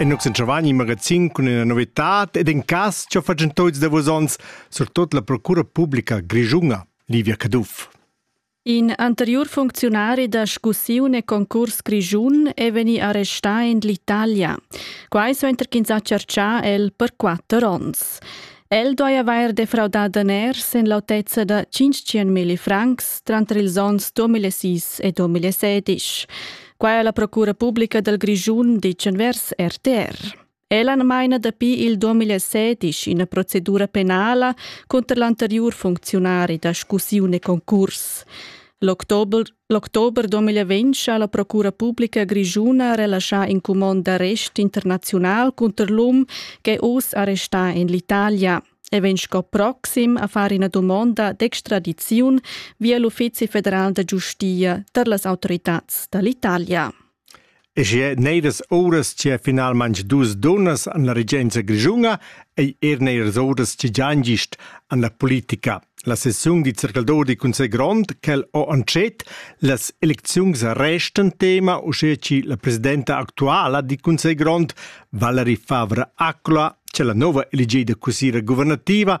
En nux en Chavagni magazin cun ina novitad ed in cas che fatgen toits da vos ons, surtot la procura publica grischunga, Livia Caduff. In anteriur funcziunari da scussiun e concurs grischun è vegni arrestà en l'Italia. Quai suenter ch'ins ha tscherchà el per quatter onns. El doi avair defraudà daners en l'autezza da 500 milli francs tranter ils onns 2006 e 2016. Quai è la Procura Publica dal Grischun, dice vers RTR. Ella maina dapi il 2016 ina procedura penala contro l'anterior funzionari da scussione concurs. L'october L'october 2020 ha la Procura publica grischuna relaschà in cumond d'arrest internaziunal cunter l'um ch'è uss arrestà en l'Italia. E vegn sco proxim a far ina dumonda d'extradiziun via l'Uffizi federal da giustia tar las autoritads da l'Italia. E sche neiras uras che finalmein dus dunnas han la regenza grischuna ei era neiras uras che gian gist en la politica. La sessiun dil circaldor dil Cussegl grond quel ho entschet, las elecziuns restan tema, uschia che la presidenta actuala dil Cussegl grond, Valerie Favre-Acqua, che la nova eligida cussira guvernativa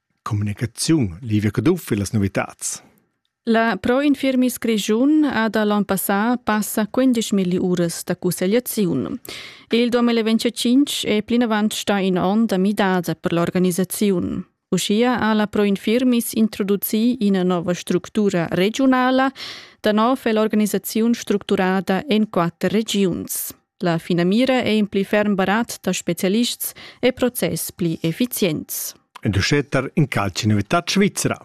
Communicaziun, Livia Caduff e las novitads. La Pro Infirmis Grischun ha da l'ann passà passa 15 milli uras da cussegliaziun. Il 2025 è plinavant stà in onn da midada per l'organisaziun. Uschia ha la Pro Infirmis introducì ina nova structura regiunala. Da nov è l'organisaziun structurada en quatter regiuns. La finamira è in pli ferm barat da spezialists e process pli effizients. En Duschetter in calci novità svizra.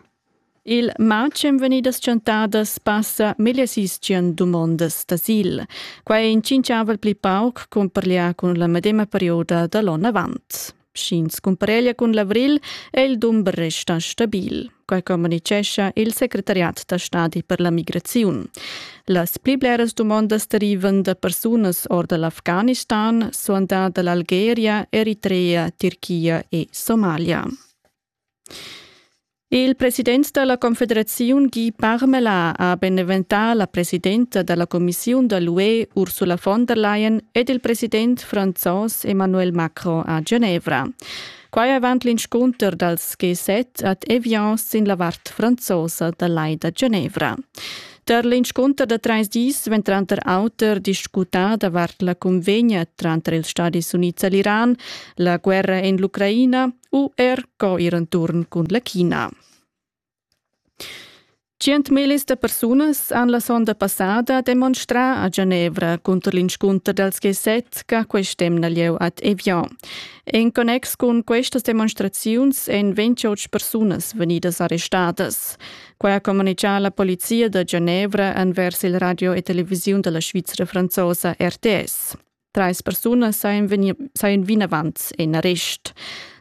Il matg en vegnidas chantadas passa megliersischian dumondas d'asil. Quai in cinciavel pli pauc cun parliar cun la medema perioda da l'onn avant. Sch'ins cumpareglia cun l'avril è il dumber resta stabil, quai communitgescha il secretariat da stadi per la migraziun. Las pli bleras dumondas derivan da persunas or da l'Afghanistan, suandà da l'Algeria, Eritrea, Turchia e Somalia. Il president dalla confederaziun Guy Parmelin ha beneventà la presidenta dalla cumissiun da l'UE Ursula von der Leyen ed il president franzos Emmanuel Macron a Genevra. Quai avant l'inscunter dals G7 ad Evian sin la vart franzosa da Lai da Genevra. Tar l'inscunter da trais dis vegn tranter auter discutà davart la cunvegna tranter ils Stadis Unids e l'Iran, la guerra en l'Ucraina, u er co ir enturn cun la China. 100.000 da persunas han la sonda passada demonstrà a Genevra cunter l'inscunter dals G7 che quest'emna lieu ad Evian. En connex cun questas demonstraziuns èn 28 persunas vegnidas arrestadas. Quai ha comunicà la polizia da Genevra envers il radio e televisiun della Svizra franzosa RTS. Treis persunas sajan, vegnir, sajan vinavant en arrest.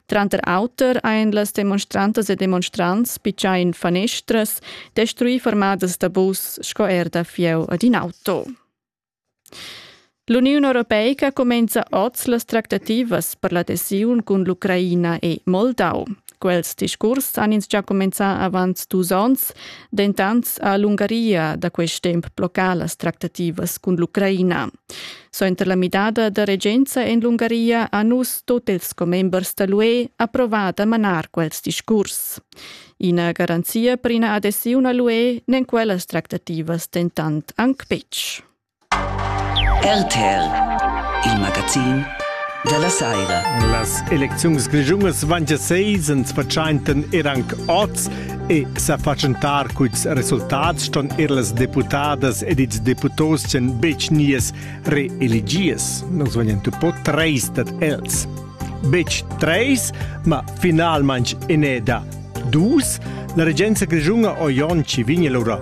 Tranter auter ein las demonstrantas e demonstrants picciai in fanestras, destruì formadas da bus sco er da fieu ad in auto. L'Uniun Europeica cumenza oz las tractativas per l'adesiun cun l'Ucraina e Moldau. Quels discurs han ins già cumenzà avant dus onns, dentant ha l'Ungaria da quest temp bloccà las tractativas cun l'Ucraina. Suenter la midada da regenza en l'Ungaria ha nus tut ils commembers da l'UE approvà da manar quels discurs. Ina garanzia per ina adesiun a l'UE n'en quellas tractativas dentant anc betg. RTL, il magazin dalla saira. Las elecziuns grischungas van gia seis ans pertschaintan er anc oz e sa fatschentar culs resultats ston er las deputadas ed ils deputos ch'en betg nies reeligies. Nus vegnan tu po treis dad els. Betg treis, ma finalmanch eneda dus. La regenza grischunga Oionci vigna lura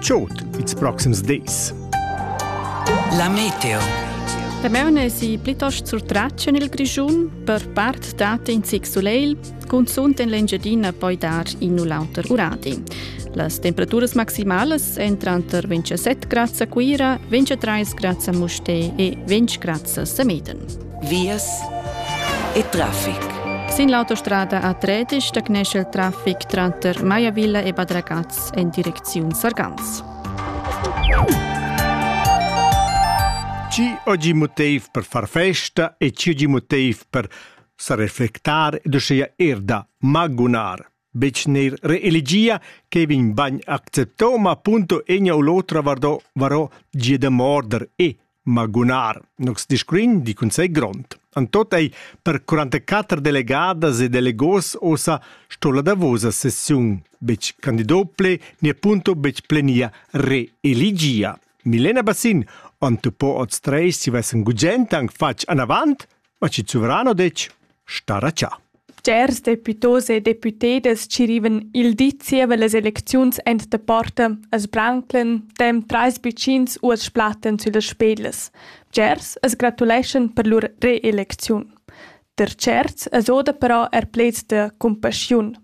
Chod ils proxims dis. La meteo. La meuna si plitost surtratg en il Grischun, per part dat in zic sulegl, cunzunt en l'Engiadina poi dar in u l'auter uradi. Las temperaturas maximalas èn tranter 27 grads a Cuira, 23 grads a Mustè e 20 grads a Sameden. Vias e traffic. Sin l'autostrada a Tredisch stagnescha il traffic tranter Maiavilla e Badragaz activs en direcziun Sargans. Ci oggi motiv per far festa e ci oggi motiv per sa reflectar ed uschia er da magunar. Bec neir reelegia che vin bagn acceptoma appunto egna u l'otra vardò, varò gia da morder e Magunar. Nox discrin di cun sei grond. An tot ei per 44 delegadas e delegos osa sto la davosa sessiun bec candidople ni appunto bec plenia reeligia. Milena Bassin, on tu po oz treis si vessen gugent anc fatg anavant? Ma chi suvrano detg, starà cha. Cers deputos e deputedas chi rivan il di zieva las elecziuns ent da porta as branclen tem trais bicins u as splatten süllas spedas. Bgers as gratuleschan per lur reelecziun. Der tscherts as oda però er pleds da cumpaschiun.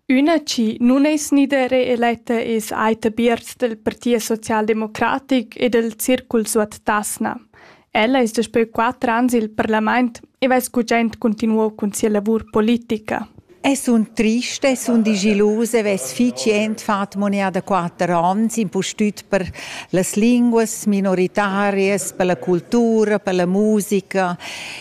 Üna chi nun es gnidera eletta es Aita Bierz dal Parti socialdemocratic e dal Circul Suot Tasna. Ella es daspö quatter ans i'l parlamaint e vess gugent cuntinuo cun sia lavur politica. E sun triste, sun digilusa, vess fich jent fat monea da quatter ans, impustüt per las linguas minoritarias, per la cultura, per la musica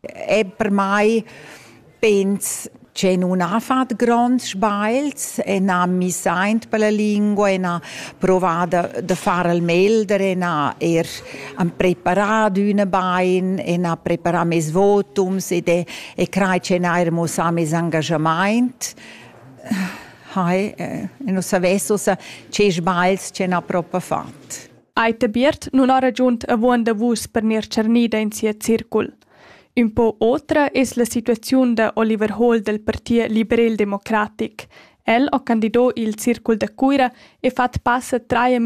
è per mai pens che nun ha fat gronds sbagls e n'ha misaint per la lingua e n'ha provà da, da far al melder e n'ha er han preparat üna bain e n'ha preparà mes votums ed è, e crai che n'ha er muossà mes engagamaint. Hai, e non savess ossa che sbagls che n'ha propa fat. Ei ta biert nun ho ragiunt avon da vus per gnir tschernida in sia circul. Ün po otra es la situaziun da Oliver Hohl dal Partit liberel-democratic. El ho candido il circul da Cuira e fat passa trais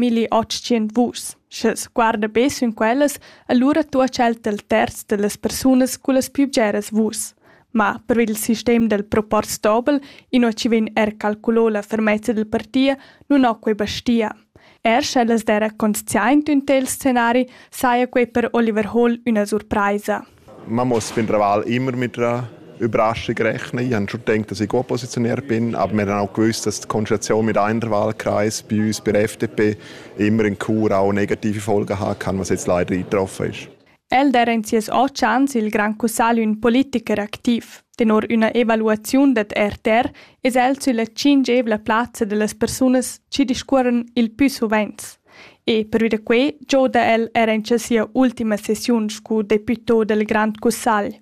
vus. Sch'els guarda be sün quellas, allura tuocha el tel terz da las persunas cullas più bgeras vus. Ma per il sistem dal proporz dobel, inua chi vegn er calculo la fermezza dal partia, nun ho quei bastia. Er sch'ellas d'eira consciaint ün tel scenari, saja quei per Oliver Hall üna surpraisa. Man muss fin Raval immer mit einer Überraschung rechnen. Ich habe schon gedacht, dass ich gut positioniert bin, aber wir haben auch gewusst, dass die Konstellation mit einem Wahlkreis bei uns, bei der FDP, immer in Chur auch negative Folgen hat kann, was jetzt leider eingetroffen ist. El dera in sias otg ans il grand cussagl ün politicher activ. Tenor üna evaluaziun dad RTR es el sülla tschingievla plazza da las persunas chi discuorran il pü suvenz. E pervi da quai gioda el era in sia ultima sessiun scu deputo dal grand cussagl.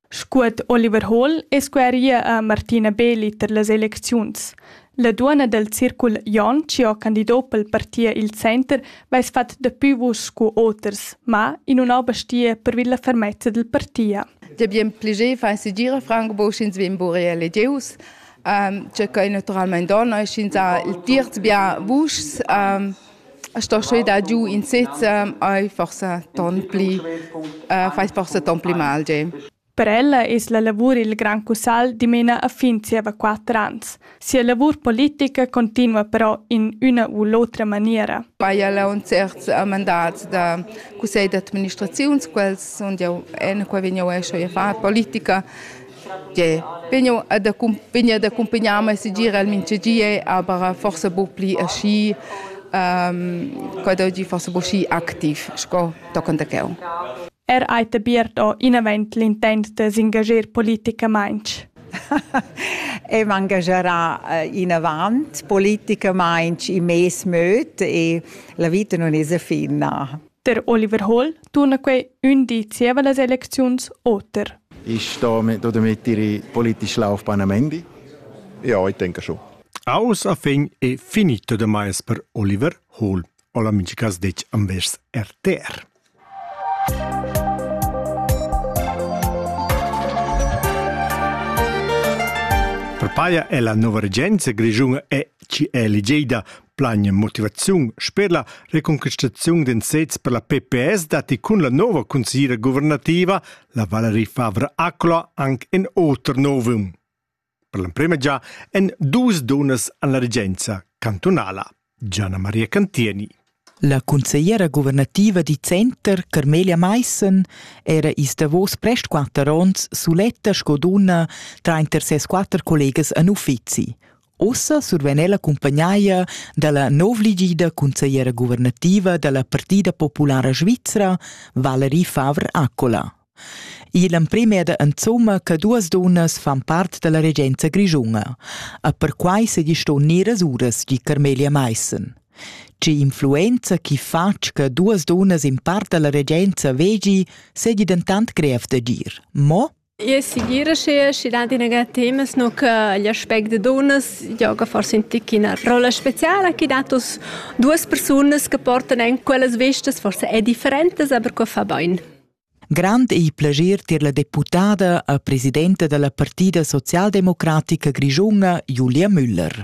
Scuet Oliver Hall es scueria a Martina Beeli tar las elecziuns. La duonna dal circul Jon chi ho candido pel parti il Center vess fat dapü vus scu oters, ma in nun ho bastia pervi la fermezza dal parti. Dabien piager fa segir Franco sch'ins vegn bure elegieus. Um, che quai naturalmente dona, sch'ins ha il terz bien vuschs. Um, sto sche da giu in sezza ei forsa ton pli uh, fais forsa ton pli mal ge. Per ella es la lavur il Gran Cussal dimena a fin zieva quatter ans. Sia lavur politica continua però in üna u l'otra maniera. Eia la un certs mandats da cussegl d'administraziun, quels sunt jau, en quai vegn jau escio a far politica, Gie, vegn ad accumpagnar ma segir el mintgagie, aber forsa buc pli aschi quadrgi forsa buc schi activ sco tochen da cheu. Er ei debiert o inavent l'intent de s'engagier politicamaintg? e m'engagerà eh, inavant politicamaintg in mes möd e la vita non es finna. Der Oliver Holl turna quei ün di zieva las elecziuns oter. Ist damit, damit Ihre politische Laufbahn am Ende? Ja, ich denke schon. Aus a fin è finito de mais per Oliver Hall. O l'amici che dec ambers RTR. Per paia è la nuova regenza grigiuna e ci è eligida Plagne motivaziun sper la reconquistaziun d'ensets per la PPS datti cun la nova consigliera guvernativa, la Valerie Favre Accola, anche in oter novum. Per l'emprima già en dus dunas alla regenza cantonala, Gianna Maria Cantieni. La consigliera guvernativa di Center, Carmelia Meissen, era is davos prest quatter onns suletta sco dunna tra inter ses quatter collegas en uffizi. Ussa survegn ella cumpagnaia dalla novligida consigliera guvernativa dalla Partida populara svizra, Valerie Favre-Accola. Igl emprem è da insomma che duas dunnas fan part dalla regenza grischuna. E perquai se giston neras uras, di Carmelia Meissen. Tge influenza chi fatg che duas dunnas in part dalla regenza vegi, sedi dentant grev d'agir. Mo? E segir sche schi dat ina temas nu che l'aspect da dunnas gioga forse in tic ina rolla speciala che dat us duas persunas che portan en quellas vestas forse è differentes aber che fa bain. Grand ei plager tier la deputada e presidenta dalla partida socialdemocratica grischuna Julia Müller.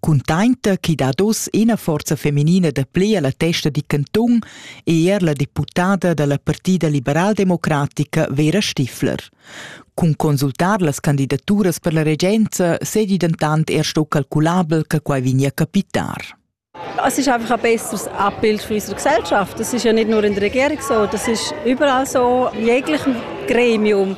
cuntainta chi dad hoz ina forza feminina da plea la testa di cantun e er la deputada da la Partida liberaldemocratica Vera Stifler. Cun consultar las candidaturas per la regenza sedi dentant er sto calculabel che quai vegnia capitar. Es ist einfach ein besseres Abbild von unserer Gesellschaft. Das ist ja nicht nur in der Regierung so, das ist überall so. In jeglichem Gremium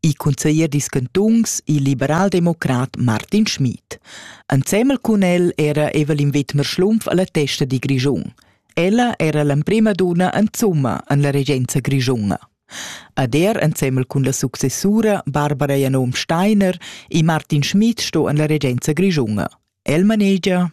il cunseglier dils cantuns, il liberaldemocrat Martin Schmid. Ensemmel cun el era Evelyn Wittmer-Schlumpf alla testa di Grischun. Ella era l'emprema duna en Zumma en la regenza grischuna. Ad er ensemmel cun la successura Barbara Janom Steiner e Martin Schmid sto en la regenza grischuna. El manegia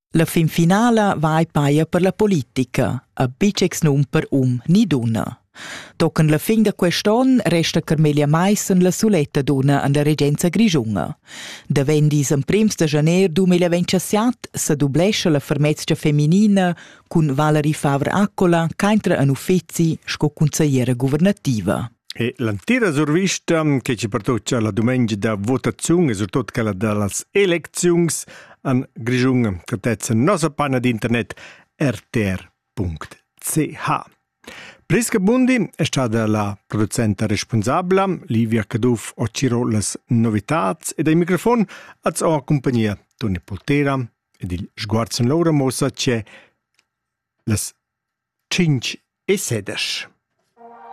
La finfinala va ei paia per la politica, a bitschex num per um ni dunna. Tochen la fin da quest onn resta Carmelia Maissen la suletta dunna an la regenza grischunga. Da vendis emprims da janer 2027 sa dublescha la fermezia feminina cun Valerie Favre-Accola, caintra an uffizi sco consigliera guvernativa. E l'antira survista che ci pertocca la dumengia da votaziun e surtut quella da las elecziuns an Grischun catezza nossa pana d'internet rtr.ch. Priska Bundi è stata la producenta responsabla, Livia Caduff ho ciro las novitats ed ai microfon az ho compagnia Toni Poltera ed il sguarzen Laura Mosa c'è las 5 e sedesch.